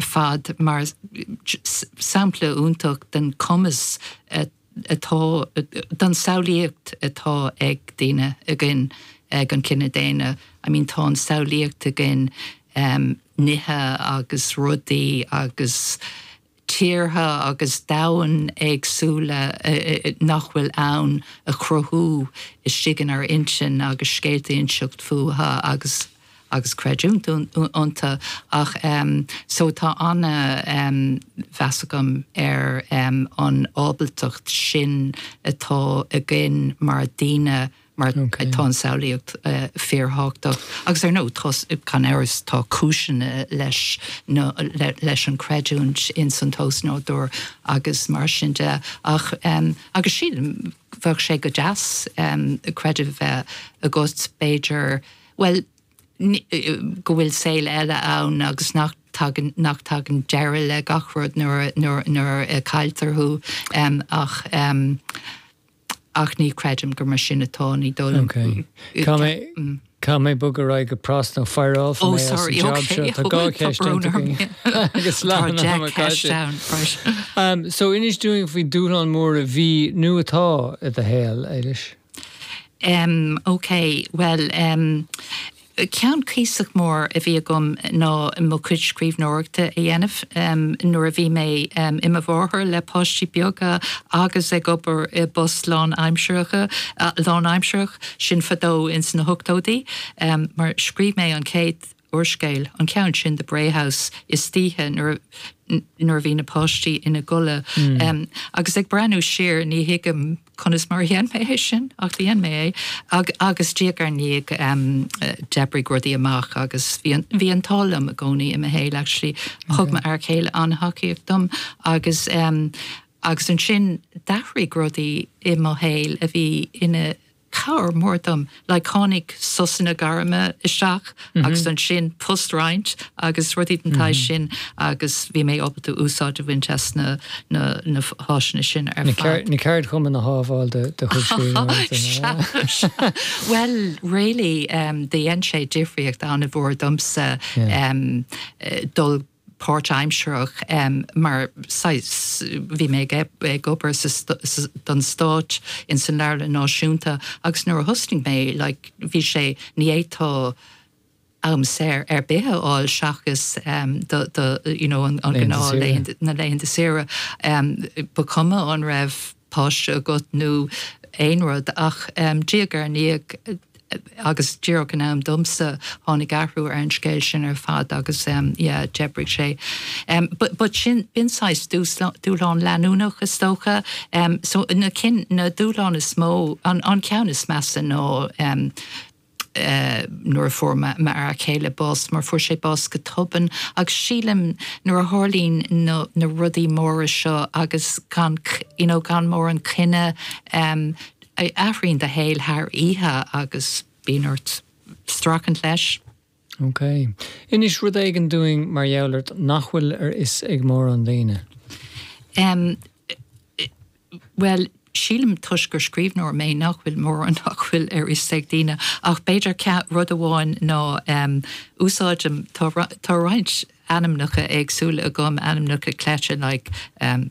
fad mar sampla iontach den chumas atá, den samhlaíocht atá ag daoine, againn, ag an chine daonna. I mean tá an samhlaíocht againn nithe agus rudaí agus tíortha agus domhain éagsúla nach bhfuil ann a chruthú istigh in ár n-intinn agus scéalta a inseacht fútha agus. agus creidiúint iontu ach so tá ana mheas agam ar an ábaltacht sin atá againn mar daoine mar atá an samhlaíocht fíor thábhachtach agus ar ndóigh tá gan amhras tá cúiseanna leis na leis an creidiúint ins an osnádúr agus mar sin de ach agus sílim bheadh sé go deas creideamh bheith agat b'fhéidir Bhuel, go bhfuil saol eile ann agus nach dtagann nach dtagann deireadh le gach rud nuair nuair a cailltear thú ach ach ní chreidim gur mar sin atá ní dul. Ok. Caithfidh mé caithfidh mé bogadh ar aghaidh go pras nó fireálfar mé as an job seo. Tá dhá cheist déanta againn agus lá na mbeidh mé caillte. So inis dúinn faoi dúshlán mór a bhí nó atá i do shaol, Éilis? M, OK, bhuel, ceann cuíosach mór a bhí agam ná mo chuid scríbhneoireachta a dhéanamh nuair a bhí mé i mo mháthair le páistí beaga agus ag obair i bpost lánaimseartha, lánaimseartha, sin fadó ins na hochtóidí, mar scríobh mé an chéad úrscéal, an ceann sin The Bray House, istoíche nuair a bhí na páistí ina gcodladh. Agus ag breathnú siar, ní thuigim conas mar a dhein mé é sin, ach dhein mé é. Agus diaidh ar ndiaidh, d'oibrigh rudaí amach agus bhí an t-ádh liom i gcónaí i mo shaol, actually. Thug m'fhear céile an-tacaíocht dom agus agus ansin d'athraigh rudaí i mo shaol a bhí ina. Cabhair mór dom. Like tháinig sosanna gairme isteach agus ansin postroinnt agus rudaí den tsaghas sin agus bhí mé ábalta úsáid a bhaint as na háiseanna sin ar fad. Na ceardchumainn a shábháil do chuid scríbhneoireachta. Sea, sea. Bhuel, really dhein sé difríocht an-mhór domsa dul go. páirtaimseartha mar saghas, bhí mé ag obair don stáit in san leabharlann náisiúnta agus nuair a thosnaigh mé like bhí sé, ní fhéadtá am saor ar bith a fháil seachas do do you know an gnáth laethanta saoire ba chuma an raibh, páiste agat nó aon rud ach diaidh ar ndiaidh agus díreach in am domsa tháinig athrú ar an scéal sin ar fad agus yeah d'oibrigh sé but sin bíonn saghas dúshlán leanúnach is dócha so na cinn na dúshláin is mó an ceann is measa ná nuair a fuair m'fhear céile bás mar fuair sé bás go tobann agus sílim nuair a tharlaíonn na na rudaí móra seo agus gan you know gan mórán coinne athraíonn do shaol thar oíche agus bíonn ort streachailt leis. OK. Inis rud éigin dúinn mar gheall ort nach bhfuil ar fhios ag mórán daoine. Em. bhuel, sílim toisc gur scríbhneoir mé nach bhfuil mórán nach bhfuil ar fhios ag daoine ach b'fhéidir rud amháin ná em. úsáidim, tá roinnt ainmneacha éagsúla agam, ainmneacha cleite like em.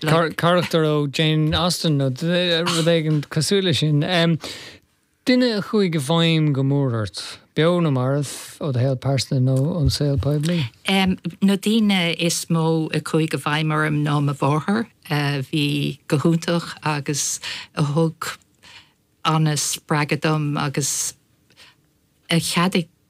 Carachtar ó Jane Austen nó rud éigin cosúil leis sin. Duine a chuaigh i bhfeidhm go mór ort, beo nó marbh, ó do shaol pearsanta nó ón saol poiblí? Na daoine is mó a chuaigh i bhfeidhm orm ná mo mháthair, a bhí go hiontach agus a thug an-spreagadh dom agus a cheadaigh